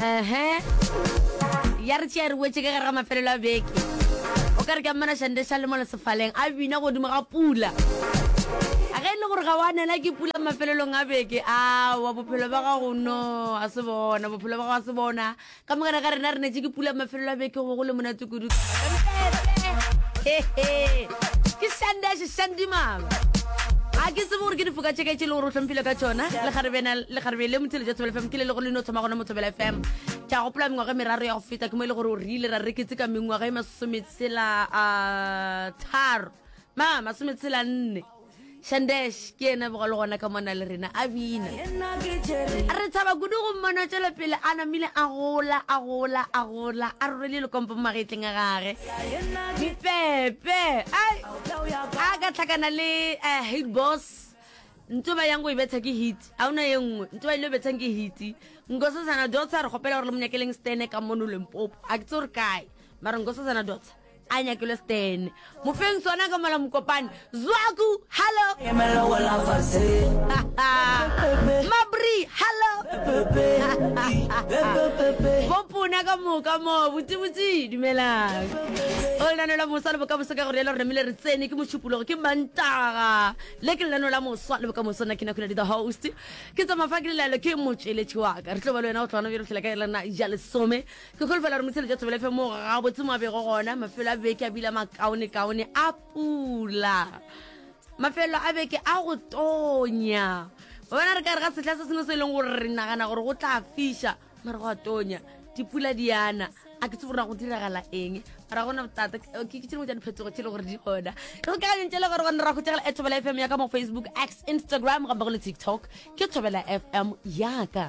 ehe ya re tšea re wetse ka gare ga mafelelo a beke o ka re ka mmana šande sa le mo le sefaleng a bina godimo ga pula a ge e le gore ga wa nela ke pula mafelelong a beke awa bophelo ba gago no a se bona bophelo ba gago a se bona ka mogare ga rena re netse ke pula mafelelo a beke go bo go le monate kudu ke sande a sesandimaba a ke tsebo gore ke difoka tšeke tše le gore o tlhomphile ka tšona le garebe le motshele jwa thobela fm ke le le go leno thoma gona mo thobela fm ke a gopola mengwaga e meraro ya go feta ke mo e le gore o rile ra reketse ka mengwaga e masometshela a tharo ma masometshela nne shandesh ke ena bego le gona ka mona le rena a bina re tshaba kudu go mmona tšwela pele a namile a gola a gola a gola a rorele lekompo mo magetleng a gage dipepe a ka tlhakana le eh, hate boss ntse ba yang go e betsha ke hit a ona ye nngwe ntse ba ile o betshang ke hit nkosazana dotsa re kgopela gore le monyakeleng stene ka mono lempopo a ke tse gore kae mara nkosazana dotsa a nyakelo stan mo feng sona ka mola mokopane zwaku hallo mabri hallo bopona ka moka mo botsebotse dumelang o lenano la moswa le bokamoso ka gore yalo re namile re tsene ke mošupologo ke mantaga le ke lenano la moswa le bokamoso nna ke na kula di the host ke tsamafa ke lelaelo ke motšweletši waka re tlo ba le wena go tlwana bjalo tlhela ka elana ja lesome Ke kholofela gore motsheletša thobela efe mo gabotse mo a bego gona mafelo a beke a bila makaonekaone a pula mafelo a beke a go tonya ba bona re ka re ga sehla se sengwe se e leng gore re nagana gore go tla fiša mare go a tonya dipula di yana a ke se gore go diragala eng ra gona botata ke ke tšhengwe tša diphetogo tšhe le gore di gona re kagantše le gore gona ra go tšegela e thobela fm ya ka mo facebook x instagram gampe go le tiktok ke thobela fm yaka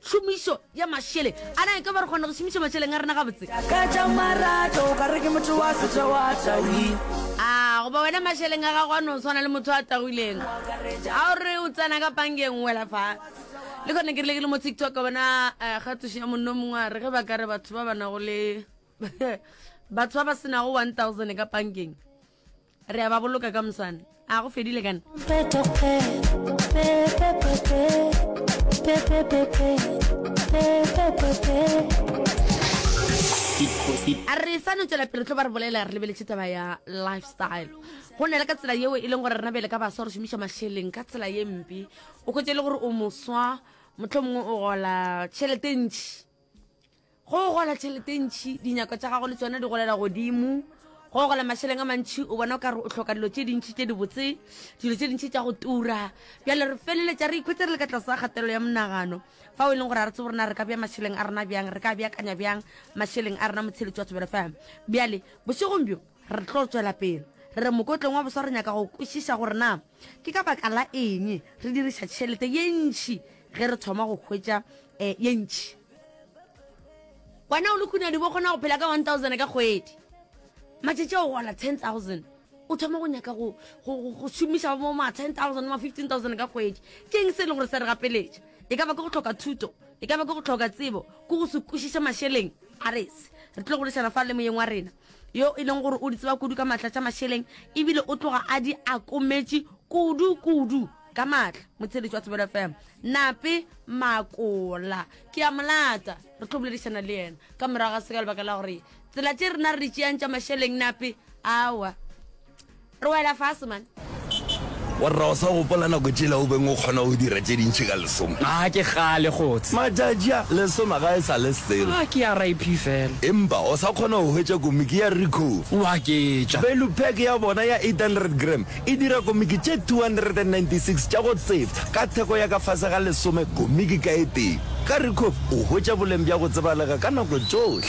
Tšhomišo ya mašele. A na e ka ba re kgona go šomiša mašeleng a rena gabotse? Ka tša marato o ka re ke motho wa setša wa tawile. A goba wena mašeleng a gago a no swana le motho a tagwileng a o re o tsena ka pangeng wela fa le kgone ke rile ke le mo tiktok bona eh, kgatišo ya monno mongwe a re ge ba ka re batho ba ba nago le batho ba ba senago 1000 ka pangeng Re a ba boloka ka moswane. A go fedile kana? a re sa no tswela pele tlo ba re bolela re lebeletše taba ya lifestyle go nela ka tsela yeo e leng gore rena bele ka baswa re šomiša mašeleng ka tsela ye mpe o kgwetse e le gore o moswa motlho mongwe o gola tšhelete ntšhi go gola tšhelete ntšhi dinyako tša gago le tsone di golela godimo go gola mašeleng a mantšhi o bona o ka re o tlhoka dilo tše dintšhi tše dibotse dilo tše dintšhi tša go tura bjale re feleletša re ikhwetse re le ka tlase ga kgatelelo ya monagano fa o e leng gore a re tsebo rena re ka bja mašeleng a rena bjang re ka beakanya bjang mašeleng a rena motsheletši wa tsebelo fm bjale bošegong bjo re tlo tswela pele re re mokotleng wa boswa re nyaka go kwešiša gore na Ke ka baka la eng re diriša tšhelete ye ntši ge re thoma go hwetša ye ntši? Wena o le kunadibe o kgona go phela ka 1000 ka kgwedi. Matšatši a o gola 10000, o thoma go nyaka go šomiša bo ma 10000, ma 15000 ka kgwedi. Ke eng se e le gore sa re gapeletša? E ka ba ke go hloka thuto, e ka ba ke go hloka tsebo, ke go se kwešiše mašeleng? A re se, re tlilo go lešana fa le moyeng wa rena. yo e leng gore o di tseba kudu ka maatla tša mašeleng ebile o tloga a di akometše kudu-kudu ka maatla motsheletši wa thobelo fm nape makola ke a molata re tlo boledišana le yena ka morago ga se ka lebaka la gore tsela tše rena re di tšeang tša mašeleng nape awa Re wela fase man. Warra o sa gopola nako tšela o beng o kgona go dira tše dintši ka lesome? Aa ke kgale kgotse. Matšatši a lesome ga e sa le selo. Aa ke ya RIP fela. Empa o sa kgona go hwetša komiki ya Recover. O a ke tša. Value pack ya bona ya 800 gram e dira komiki tše 296 tša go tsebja ka theko ya ka fase ga lesome komiki ka e tee. Ka Recover o hwetša boleng bja go tsebalega ka nako tšohle.